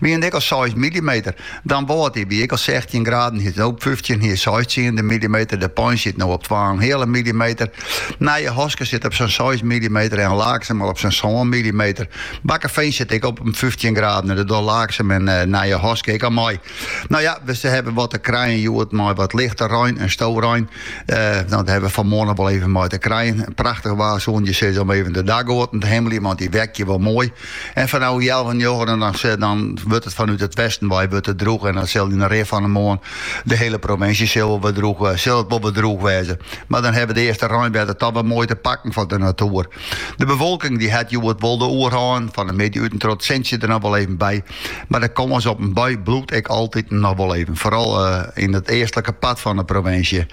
Wiene it ek al seis millimeter, Damwâld, dy wie ek al sechstjin graden, hjir is it no op fyftjin, hjir seis tsiende millimeter. De Pein sit no op twa en in heale millimeter. Nijehaske sit op sa'n seis millimeter en Laaksum al op sa'n sân millimeter. Bakkeveen sit ek op fyftjin graden en dat docht Laaksum en Nijehaske ek al mei. No ja, we hawwe wat te krijen hjoed mei wat lichte rein en storein. No, dat hawwe we fan moarn noch wol even mei te krijen. Prachtich waar soene je sizze om even de dakgoaten te himmeljen, want dy weakje wol moai. En fan no healwei njoggenen dan, se- dan wurdt it fanút it westen wei wurdt het droech. En dan sil yn de rin fan de moarn de hiele provinsje sil wel wat droech, eh, sil it wol wat droech wêze. Mar dan hawwe de earste reinwetter toch wer moai te pakken fan de natoer. De bewolking dy hat hjoed wol de oerhân, fan de middei út en troch it sintsje der noch wol even by. Mar de kâns op in bui bliuwt ek altiten noch wol even, foaral eh, yn it eastlike part fan de provinsje.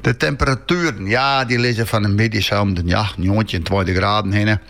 De temperatueren, ja, dy lizze fan de middei sa om de, ja, njoggentjin, tweintich graden hinne.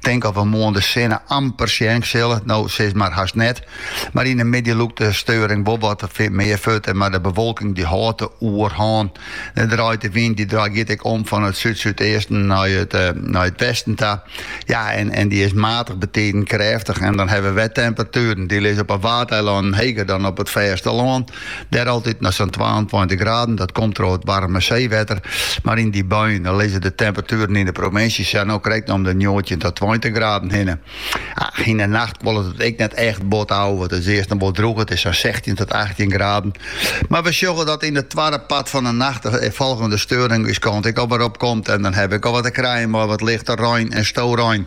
Tink of we moarn de sinne amper sjen sille. No, sis mar hast net. Mar yn de middei lûkt de steuring wol wat mear fuort, mar de bewolking dy hâldt de oerhân. Dan draait de wyn, dy giet ek om fan it súd-súdeasten nei it nei it westen ta. Ja, en, en dy is matig, betiden krêftich en dan hawwe we de temperatueren. Dy lizze op 'e Waadeilannen heger dan op it fêste lân. Dêr altyd noch sa'n twaentweintich graden, dat komt troch it waarme seewetter. Mar yn dy buien dan lizze de temperatueren yn de provinsje sa no krekt om de njoggentjin ta tweintich graden hinne. Yn de nacht kuollet it ek net echt bot ôf, it is earst noch wol droech, it is sa'n sechstjin ta achttjin graden. Mar we sjogge dat yn it twadde part fan de nacht de folgjende steuring ús kant ek al wer opkomt en dan hawwe we ek al wat te krijen mei wat lichte rein en storein.